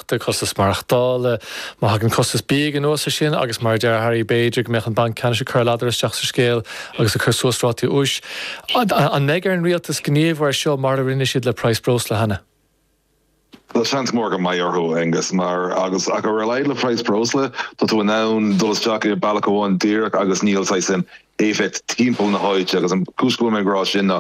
de chostas maireachtála. Má thagann costas bídh anuas ar sin agus mar a deir Harry b'fhéidir go mbeadh an Banc Ceannais ag cur a ladar isteach sa scéal agus ag cur suas rátaí úis. An mbeidh ar an Rialtas gníomhú air seo mar a rinne siad le praghas breosla cheana? Bhuel seans mór go mbeidh orthu, a Aonghus, mar ach ar a laghad le praghas breosla tá tú in ann dul isteach i bealach amháin díreach agus níl saghas in éifeacht timpeall na háite agus an cúis go bhfuil mé ag rá sin ná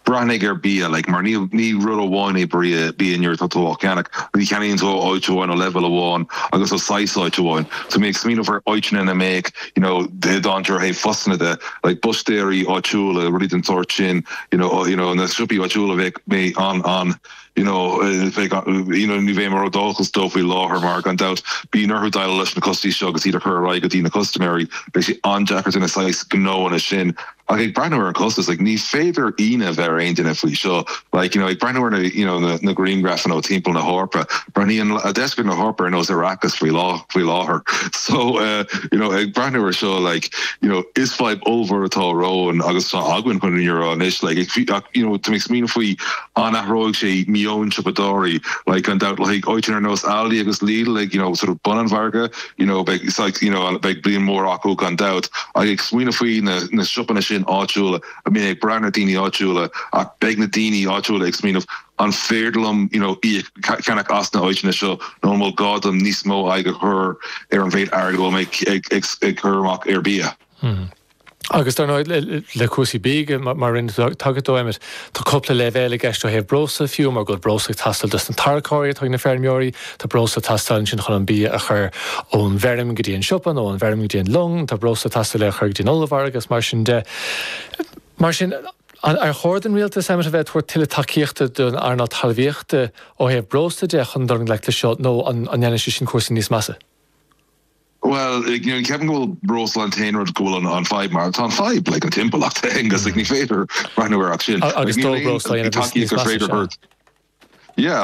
breathnaigh ar bia like mar ní ní rud amháin é br- bia nuair atá tú á cheannach ní cheannaíonn tú ó áit amháin ó leibhéal amháin agus ó saghas áit amháin so mé ag smaoineamh faoi áiteanna ina mbeadh you know i ndeacair ó thaobh postanna de like búistéirí áitiúla rudaí den tsórt sin you know you know na siopaí áitiúla bheadh mé an an you know, bheidh, you know, ní bheadh mé ródhóchasach dóibh faoi láthair mar gan dabht bíonn orthu déileáil leis na costais seo agus iad a chur ar aghaidh go dtí na custaiméirí, beidh sé an-deacair do na saghas gnóanna sin. Ach ag breathnú ar an costas, like, ní féidir an locht a bheith ar aon duine faoi seo. Like, you know, ag breathnú ar na, you know, na, na griangrafanna ó timpeall na hEorpa, breathnaíonn deisceart na hEorpa ar nós Arrakis faoi lá, faoi láthair. So, uh, you know, ag breathnú ar seo, like, you know, is fadhb ollmhór atá romhainn agus tá againn chun an euro anois, like, ag fi- ach, you know, tá mé ag smaoineamh faoi an athróidh sé meon siopadóirí like gan dabht like áiteanna ar nós Aldi agus Lidl like you know sort of bun an mhargaidh you know beidh saghas you know beidh bliain mór acu gan dabht ach ag smaoineamh faoi na na siopanna sin áitiúla a mbíonn ag brath na daoine áitiúla ach beidh na daoine áitiúla ag smaoineamh an féidir liom you know íoc ceannach as na áiteanna seo nó an mbeidh gá dom níos mó aghaidh a chur ar an mhéid airgid a bhfuil mé ag ag ag cur amach ar bia. Agus dar ndóigh le cúrsaí bídh mar rinne tú tagairt dó Emmet, tá cúpla leibhéal i gceist ó thaobh breosla de fiú mar go bhfuil breosla ag teastáil dos na tarracóirí atá ag na feirmeoirí, tá breosla ag teastáil ansin chun an bia a chur ón bhfeirm go dtí an siopa nó ón bhfeirm go dtí an long, tá breosla ag teastáil é a chur go dtí an ollmhargadh is mar sin de. Mar sin, ar chóir don Rialtas Emmet a bheith ag tabhairt tuilleadh tacaíochta don earnáil talmhaíochta ó thaobh breosla de chun dul i ngleic leis seo nó an ndéanfaidh sé sin cúrsaí níos measa? Bhuel, ní cheapaim gurb é an breosla an rud go bhfuil an fadhb mar tá an fadhb, like an timpeallacht, a Aonghus, like ní féidir breathnú ar sin.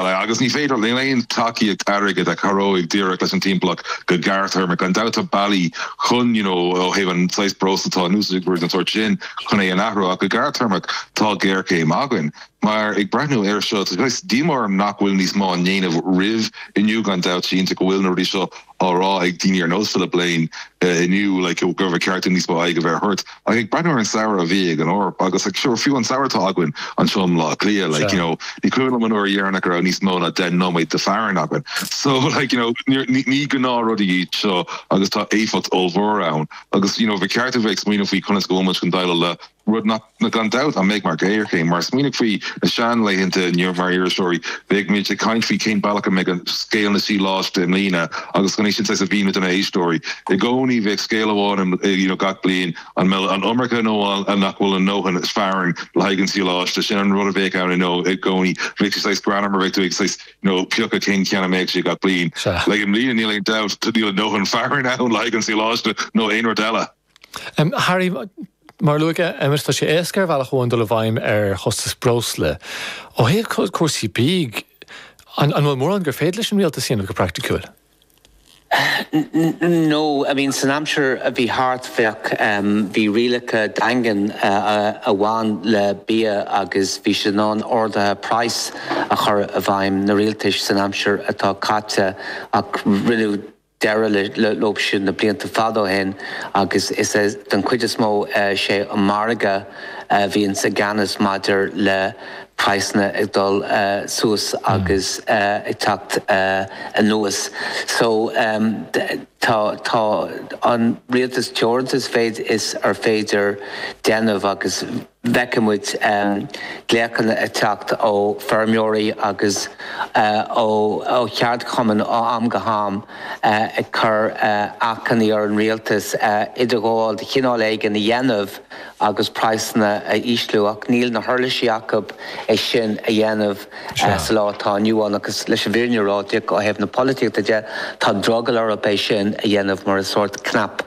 like agus ní féidir, níl aon tacaíocht airgid a cabhróidh díreach leis an timpeallacht go gearrthéarmach. Gan dabht tá bealaí chun, you know, ó thaobh an saghas breosla atá in úsáid is rudaí den tsórt sin chun é a athrú ach go gearrthéarmach tá géarchéim againn. Mar ag breathnú air seo, tá saghas díomá orm nach bhfuil níos mó á ndéanamh roimh inniu, gan dabht, cinnte go bhfuil na rudaí seo á rá ag daoine ar nós Philip Lane inniu like go raibh ceart dúinn níos mó aghaidh a bheith thabhairt ach ag breathnú ar an samhradh a bhí ag an Eoraip agus like sure fiú an samhradh atá againn anseo i mBlá Cliath like you know ní cuimhin liom an uair dheireanach a raibh níos mó ná deich nóiméad de fearthainn againn so like you know níor ní ní gnáth rudaí iad seo agus tá éifeacht ollmhór orainn agus you know bhí ceart a bheith ag smaoineamh faoi conas go bhfuil muid chun déileáil le Rud nach aon dabht an mbeidh muid i ngéarchéim. Mar smaoinigh faoi na sean laethanta ann mar iriseoirí, bheadh muid ag caint faoi cén bealach a mbeidh scéal an tsadhlais i mbliana agus gan é sin saghas a mhíniú do na héisteoirí. I gcónaí bheadh scéal amháin in you know gach bliain, an mbeidh an iomarca nó an nach bhfuil a ndóthain féir ann le haghaidh an tsadhlais. Sin an rud a bheadh ann you know i gcónaí. Bheadh sé saghas greannmhar mar bheadh tú ag saghas you know piocadh cén ceann a mbeadh sé gach bliain. Sea. Like i mbliana níl aon dabht níl a ndóthain féir ann le haghaidh an tsadhlais nó aon rud eile. Harry, mar a luaigh mé, Emmet, tá sé éasca ar bhealach amháin dul i bhfeidhm ar chostas breosla. Ó thaobh cúrsaí bídh de, an bhfuil mórán gur féidir leis an Rialtas a dhéanamh go praiticiúil? N, No, I mean san aimsir a bhí thart bheadh, bhí rialacha daingean a bhain le bia agus bhí siad in ann arduithe praghas a chur i bhfeidhm, na Rialtais san aimsir atá caite ach rinneadh, deireadh leo siúd na blianta fada ó shin agus is don chuid is mó sé an margadh a bhíonns i gceannas maidir le praghsanna ag dul suas agus ag teacht anuas. So tá tá an Rialtas teoranta sa mhéid is ar féidir déanamh agus. feicimid glaochanna ag teacht ó feirmeoirí agus ó cheardchumainn ó am go ham ag cur achainí ar an Rialtas idirghabháil de chineál éigin a dhéanamh agus praghsanna a ísliú ach níl na huirlisí acu é sin a dhéanamh. sa lá atá inniu ann agus leis an bhfírinne a rá, ó thaobh na polaitíochta de, tá drogall orthu é sin a dhéanamh mar is sórt cnaipe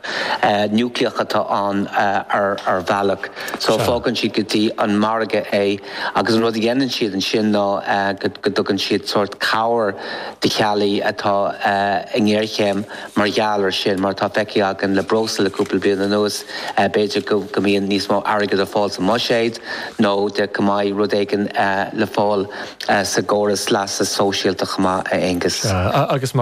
núicléach atá ann ar bhealach. So fágann siad go dtí an margadh é agus an rud a dhéanann siad ansin ná go dtugann siad sórt cabhair do theaghlaigh atá i ngéarchéim. mar gheall ar sin. Mar atá feicthe againn le breosla le cúpla bliain anuas, b'fhéidir go mbíonn níos mó airgead ar fáil sa mbuiséad nó go mbeidh rud éigin le fáil sa gcóras leasa sóisialta chomh maith, a Aonghus. Sea, agus